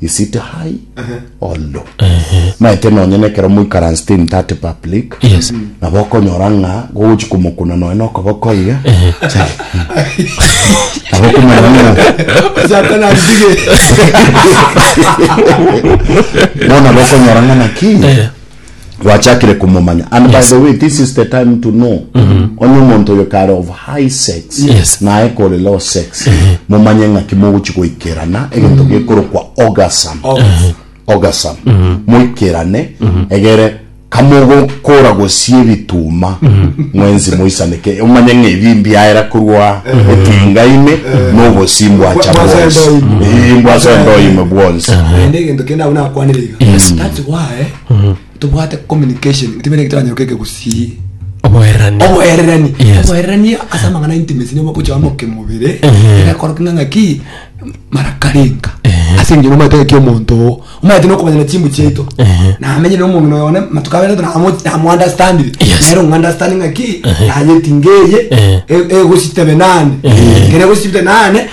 you sit high or low maete nonye nekero moikaransete in that public Yes. nabo okonyora ng'a gogochi komokuna nonya na okoboko iga nabo okomanya ng'a Satan adige. bono nabo okonyora ng'a naki gwachakire komomanya and yes. by the way this is the time to know mm -hmm. onye omonto oyo kare of high sex yes. naye kore low sex mm -hmm. momanye ng'aki mogochi goikerana egento mm -hmm. gekorokwa orgasm orgasm mm -hmm. moikerane mm -hmm. egere kamogokora gosie ebituma mm -hmm. mwenzi moisaneke omanye ng'ebi mbiaera korwa mm -hmm. etinga ime mm -hmm. nobosi mbwacha bwonsi mbwacha endoime bwonsi ende egento kenda abona akwanire iga yes. that's why tobwate communication tibere kitanyoka ekegusii oboererania oboererani Yes. oboererani ase amang'ana intimacy nigo mogochia moke mobere Ehe. egakoroka ng'a ng'aki marakarenka Ehe. ase eng'encho nomanyete ng'aki omonto oo omanyete nokomanya na chimbu chiaito Ehe. namenyire omong'ina oyo one matuko abere namounderstandire Yes. nere ong'understandi ng'aki Ehe. nayetinga eye Ehe. e- egositebe nane Ehe. kere egositebe nane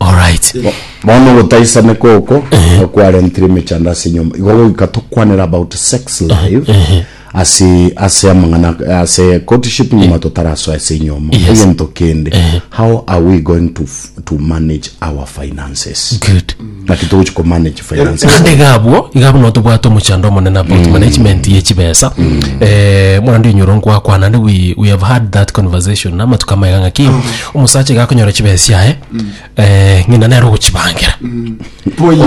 Alright. Bono ogotaisana koko okwarentire emechando ase enyomba igo goika tokwanera about sex life ase ase amang'ana ase courtship nyuma totarasoa ase enyomo Yes. egento kende how are we going to, f- to manage our finances Good. naki togochi komanage Finance. naende iga abwo iga buna otobwate omochando omonene about management ye chibesa eh, muna ndinyoro nkwakwa naende we, we have had that conversation na amatuko amaiga ng'aki omosacha iga akonyora chibesa chiaye eh, ng'ina nere ogochibangira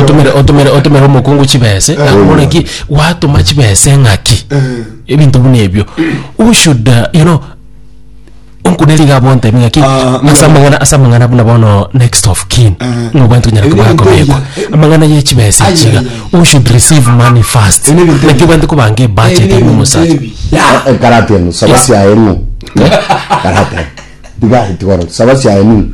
otumire otumire otumire omokungu chibesa akamona ki watuma chibesa ng'aki ebinto buna ebio u should uh, you know Onkuneri iga abwantebie ng'aki ase amang'ana ase amang'ana buna bono next of kin ng'a obwate onyare koba akobeekwa amang'ana ye chibesa echi iga u should receive money first naki obwate kobanga ebudget ime omosacha Karate eno saba siaye ng'o? Karate tiga tiga oro saba siaye nini?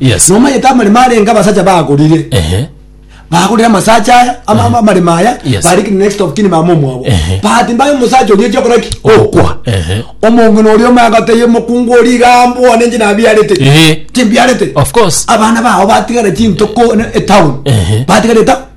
Yes. Nomanyete amaremo arenge abasacha bagorire Ehe. bagorire amasacha aya ama- ama- amaremo aya Yes. bari kini next of kini mama omwabo Ehe. but mbaye omusacha oria echi okora ki okwa Ehe. omong'ina oria omagoteye omokungu ori igambo one nche nabiarete Ehe. timbiarete Of course. abana bao batigara chintoko ne- etown Ehe. batigara etown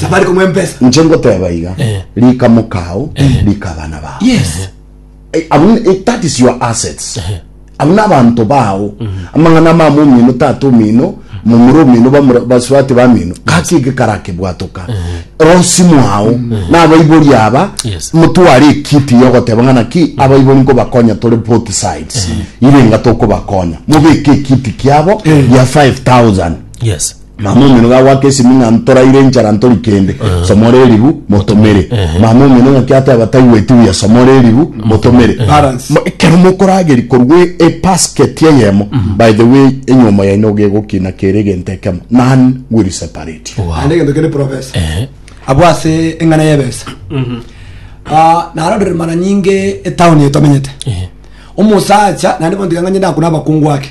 Safari kumuha empesa. inche ngoteba iga Eh. rika mokao rika abana bao Yes. Eh, abo ni- eh, that is your assets abo nabanto bao amang'ana amama omino tata omino momura omino bamura- baswati bamino gaki eke karakebwatoka rosi mwao nabaibori aba Yes. motware ekiti yogoteba ng'ana ki abaibori nkobakonya tore both sides irenga tokobakonya mobeke ekiti kiabo ya 5000 Yes. Mama omino gagoaka esimi ng'a ntoraire enchara ntori kende, somora eribu, motomere. Mama omino ng'aki ateba taigweti buya, somora eribu, motomere. Balance. Mo- Ekero mokorageri korwa e- ebasket eyemo, by the way, enyiomo yaino iga egokina kere egento ekemo, none will separate you. naende egento kende profesa abwo ase eng'ana y'ebesa Ah, narorire mara nyinge etown etomenyete omosacha naende bono tiga ng'anchete akuna abakungu ake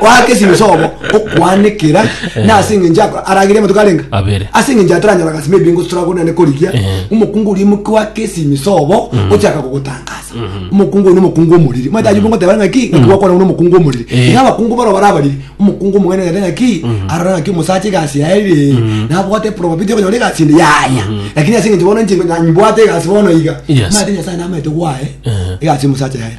Oake esinwe sobo okwanekera na ase engencho akora aragere amatuko arenga Abere. ase engencho ataranyora gasi maybe ngosutura gona ne korigia Eh. omokungu oria omoke wake esinwe sobo ochaka kogotangasa omokungu oyo omokungu omoriri mata ayubu ngoteba ngaki ngaki gwakora buna omokungu omoriri Eh. iga abakungu baro bara abariri omokungu omogene ogete ngaki arora ngaki omosacha egasi yaye ere nabwate probability yo konyora egasi ende yaya lakini ase engencho bono inche nyimbwate egasi bono iga Yes. mate nyasae namaete gwaye Eh. egasi omosacha yaye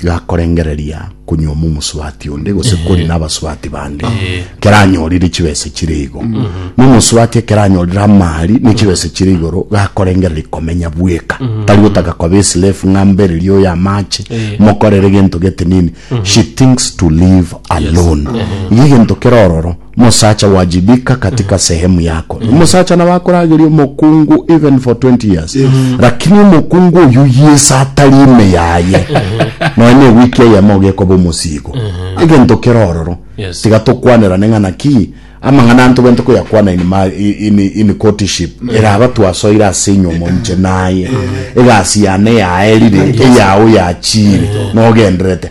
igakorengereria konyuoma omosubati onde gose eh. kori n'abasubati bande eh. keranyorire chibese chire igo mm. nomosubati ekeranyorire amari ne chibese chire igoro gakorengereria komenya bweka mm. tari gotaka koba eslave ng'ambererie oyo amache eh. mokorere gento gete nini mm-hmm. she thinks to live alone igo egento kerororo Mosacha wajibika katika sehemu yako ni mosacha nabo akorageria omokungu even for 20 years lakini omokungu oyu yesa atari ime yaye nonya na ewiki eyemo ogekoba omosiigo egento kere ororo Yes. tiga tokwanerane ng'a naki amang'ana anto bento koyakwana in, ma, in, in courtship eraba twasoire ase enyoma onche naye egasi yane yaerire eyao yachire nogenderete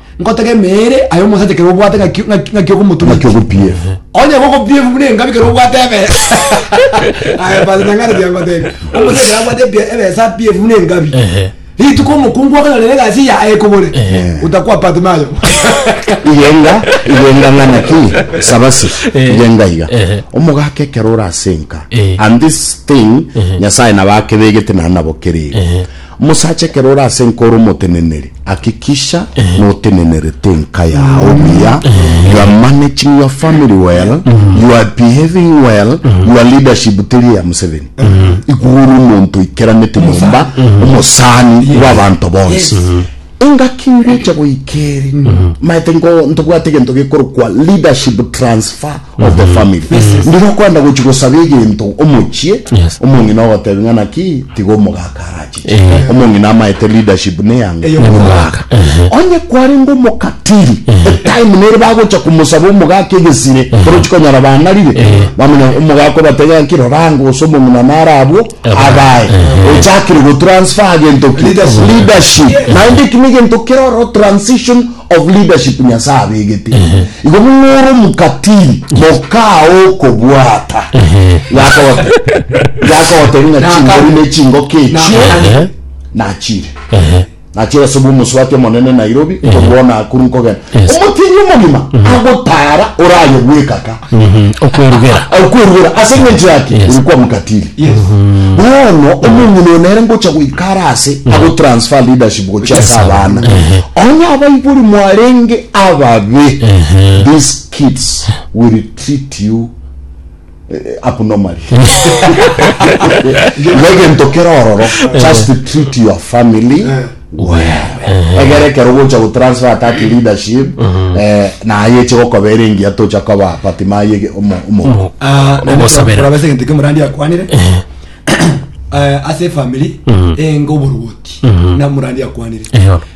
Ngotaka emeere aye omosacha ekero obwate ng'aki ng'aki ng'aki ogomotumia Ng'aki ogopiefu. Onye igo ogopiefu buna engabi ekero obwate ebe Aye Pastor Nyang'are tiagotebi. Omosacha ekero abwate ebi- ebesa apiefu buna engabi. Ehe. Rituko omokungu okonyora nere egasi eya aye ekobore. Otakwa Pat Mayo. igenga igenga ng'a naki sabasi Eh. igenga iga Ehe. omogaka ekero orasenka Eh. and this thing nyasaye nabo akebegete naende nabo kerere Ehe. Omosacha ekero ore ase enka ore omoteneneri, hakikisha notenenerete enka yao buya, you are managing your family well, you are behaving well, your leadership teri eya Museveni. Igo ore omonto oikeranete nyomba, omosani bw'abanto bonsi. Engaki ngecha goika eri maete ngo ntobwate gento gekorokwa leadership transfer of the family. Ndire okoenda gochi gosaba egento omochie, Yes. omong'ina ogotebi ng'a naki tiga omogaka arachiche. Eh. Omong'ina amaete leadership ne yanga Eyo omogaka. Ehe. Onye kwarenge omokatiri, etime nere bagocha komosaba omogaka egesire, orochi konyora bang'arire, bamanya omogaka obatebia ng'aki rora ango gose omong'ina nare abwo, Abae, ochakire go transfer gento ki? Leadership. Naende eki negento kere ororo transition of leadership Nyasae abegete. Igo buna ore omokatili mokaao okobwata. Yakogote. Yakogote ng'a chingori ne chingoka echio nachire. Nachire ase bw'omosubati omonene Nairobi nkorwa ona akuru nkogenda Yes. omotini omogima agotara oraye bwekaka Mhm. Okwerugera. okwerugera ase eng'encho yake Yes. ori kwamokatiri bono omong'ina oyo nere ngocha goikara ase agotransfer leadership gochia ase abana onye abaibori mwarenge ababe these kids will treat you abnormally negento kerororo just treat your family well egere kero gocha go transfer that leadership eh, naye eche gokobera engiya tocha koba patimaye omo omo Ah, nende Ogosabera. kora base egento kemorandi akwanire Eh, ase efamiri enga oborwoti na morandi akwanire Eyo.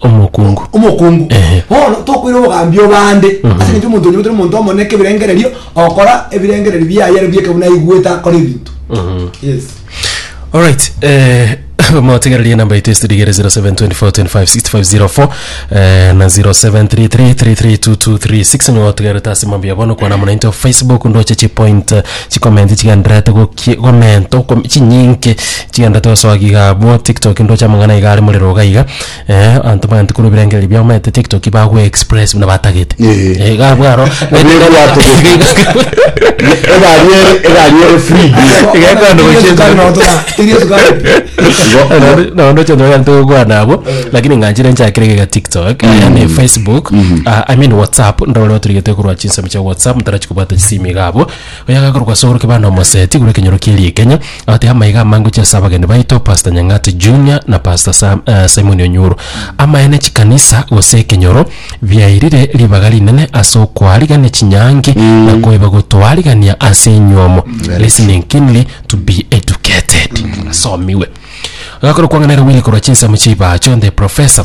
Omokungu. Omokungu. Ehe. Bono tokoira obogambi obande. Mhm. Ase eng'encho omonto onyebete omonto omone kebirengererio ogokora ebirengererio biaye aria bieke buna aigwete akore ebinto. Mhm. Yes. Alright, eh, motigereria enamba yaito estudio igere 0724256504 eh, na 0733332236 nigo otigerete ase mambi ya bono kwana muna into facebook ndoche chipoint eh, chikomenti chigenderete gokie- gomenta okom- chinyinke Chianda tosoa giga abwo tiktok ndoche amang'ana iga are morero iga iga eh, abanto bayanto korwa ebirengererio biabo baete tiktok bagwe express buna batagete Eh. Eh, iga abwo aro Ebirengererio batagete. egari ere egari ere free bi Iga ekoenda gochienza. Igo- ndoche ndoyanto gokwana abwo lakini ng'anchire nchakire giga tiktok eh, ne facebook ah, i mean whatsapp ndore otorigete korwa chinsemo chia whatsapp motarachi kobwata chisimi iga abwo Oyagakorwa ase orokia bande omosee tigure ekenyoro kie riekenya abate amaiga amange gochia ase abageni baito Pastor Nyang'ati Junior na Pastor Sam, eh, Simon Onyuro. Amaene chikanisa gose ekenyoro biairire ribaga rinene ase okoarigania chinyangi na koiba gotoarigania ase enywomo. Listening keenly to be educated. Asomiwe. Agakorwa kwang'ana ere Willy korwa chinsemo chi'ebacho the professor.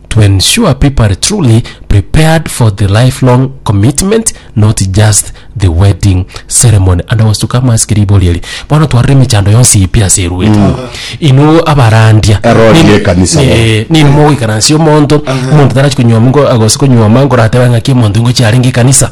to ensure people are truly prepared for the lifelong commitment not just the wedding ceremony and ogosuka amasikira riboria eri bono twarire emechando yonsi eye pi ase eruete inwe abarandia Erori Nini- y'ekanisa. eh, nini mogoikaransia omonto omonto tarachi konywoma ngo- gose konywoma ngoratebe ng'aki omonto ingochi arenge ekanisa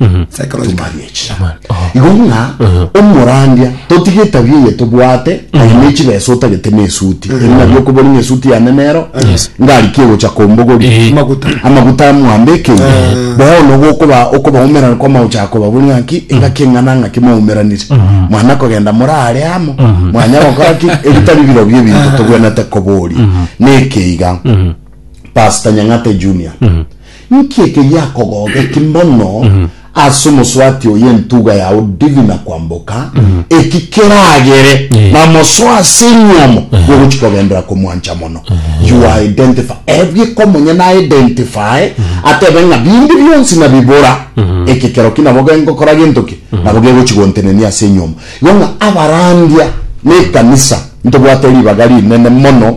Mhm. psychological Too much. nature Aman- oh. igo ng'a omorandia totige etabia eye tobwate aye ne chibesa otagete na esuti eri nabio okobori ng'a esuti yane nero ngariki egocha kombogori Eh. Maguta. amaguta amwambe ekei bono nogo okoba okobaumerana kwa magocha akobabori ng'a ki engaki eng'ana ng'a ki mwaumeranire mwana kogenda morare amo mwanya gokora ki ebitari birobio ebinto tobwenete koboria nekeiga pastor nyang'ate junior Inki ekegiakogogeti mono ase omoswati oyo entuga yao divina kwamboka, eki keragere namosoe ase enyomo bw'ogochia kogendera komwancha mono. You are identify Ebi ekomonya na identify atebe ng'a bindi bionsi nabibora, eke keroki nabo gengokora gento ki? Nabo gegochia gontenenia ase enyomo. Igo ng'a abarandia na ekanisa ntobwate ribaga rinene mono.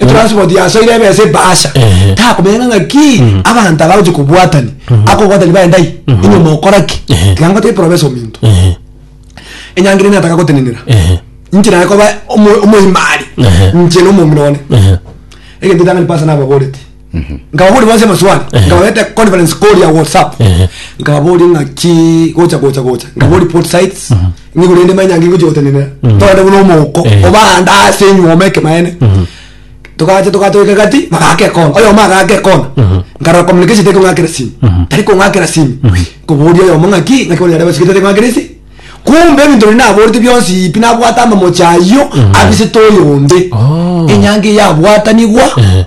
etransport yasoire ebesa ebahasha Ehe. takomenya ng'a ng'aki abanto aba gochia kobwatani akobwatani baye ndai enyoma okora ki Ehe. tiga ngote eprobesa ominto Ehe. enyangera ime nataka gotenenera Ehe. inche naye koba omo- omoimari Ehe. inche na omomura one Ehe. egento etang'ani pastor nababorete nkababori bose amaswali nkababete conference call ya whatsapp Ehe. nkababori ng'aki gocha gocha gocha nkababori port sites ng'igure ende manya ngi gochi gotenenera togende buna omouko Ehe. obande ase enyuoma ekemaene togacha togacha goika gati bagaka ekona oyomo agaka ekona nkarora communication tari kong'akera simu tari kong'akera simu nkoboria oyomo ng'aki ng'aki bono yareba sigete tari kong'akera isi kumbe ebinto biri naborete bionsi ipi nabwate amamochi ayio abisete oyonde Oh. enyanga eyabwatanigwa Ehe.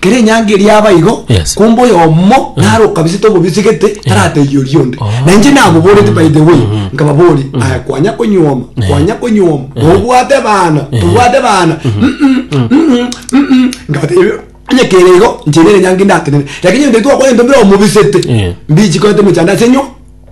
Kera enyanga eria yaba igo, Yes. kumbe oyomo nare okabisete obobisi gete, taratebia oria onde. Oh. Na inche naboboreti by the way, nkababoria, aya kwanya konyuoma, kwanya konyuoma, nobwate bana, tobwate bana, mm, mm, mm, mm, mm, mm. nkabatebia onye kere igo, inche nere enyanga indatenene, lakini onde twakwana intwe bire omobisete, Eh. mbichi koete emechando ase enyuo.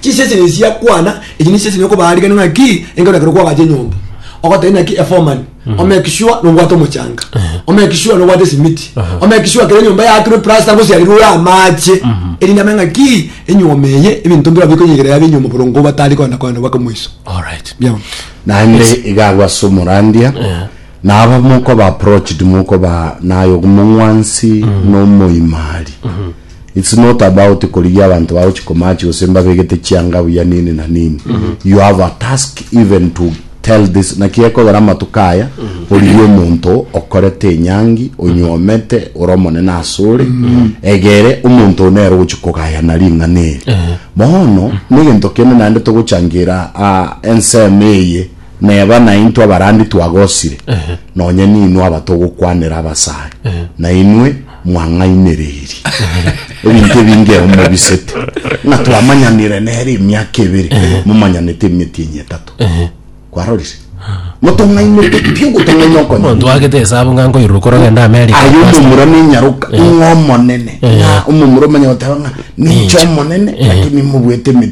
Chinsa echi nechia kwana, echi nechinsa echi nokobaa rigena ng'aki enga orakere kwabacha enyomba. Ogotebia naki eforeman, omake sure nobwate omochanga. Omake sure nobwate esimiti. Omake sure kere enyomba yaakirwe plaster gose yariroe amache. Erinde amenye ng'aki enyoma eye ebinto mbirobio bikonyegerera yabe enyoma borongo batari kogenda kogenda bake moiso. Alright. Biao. Naende iga agwo ase omorandia naba mokoba approached mokoba naye omong'wansi na omoimari It's not about korigia abanto bagochi komatch gose mbabegete chianga buya nini na nini. You have a task even to tell this naki gekogera amatuko aya origie omonto okorete enyangi onyuomete ore omonene asore egere omonto one ere ogochi kogayana ring'ana eri. Bono negento kende naende togochangira ah, ensemo eye neba naintwe abarandi twagosire nonye ninwe abatogokwanera abasare nainwe mwang'ainereirie ebinto ebinge emo mobisete, ng'a twamanyanire nere emiaka ebere, momanyanete emeti enya etato. Kwarorire? Motong'ainete pi ogotong'aina okonyene. Omonto agete esabu ng'a nkoirurwa korogenda America. Aye pastor. omomura nenyaroka ng'a omonene ng'a omomura omanya goteba ng'a ninche omonene lakini mobuete emeti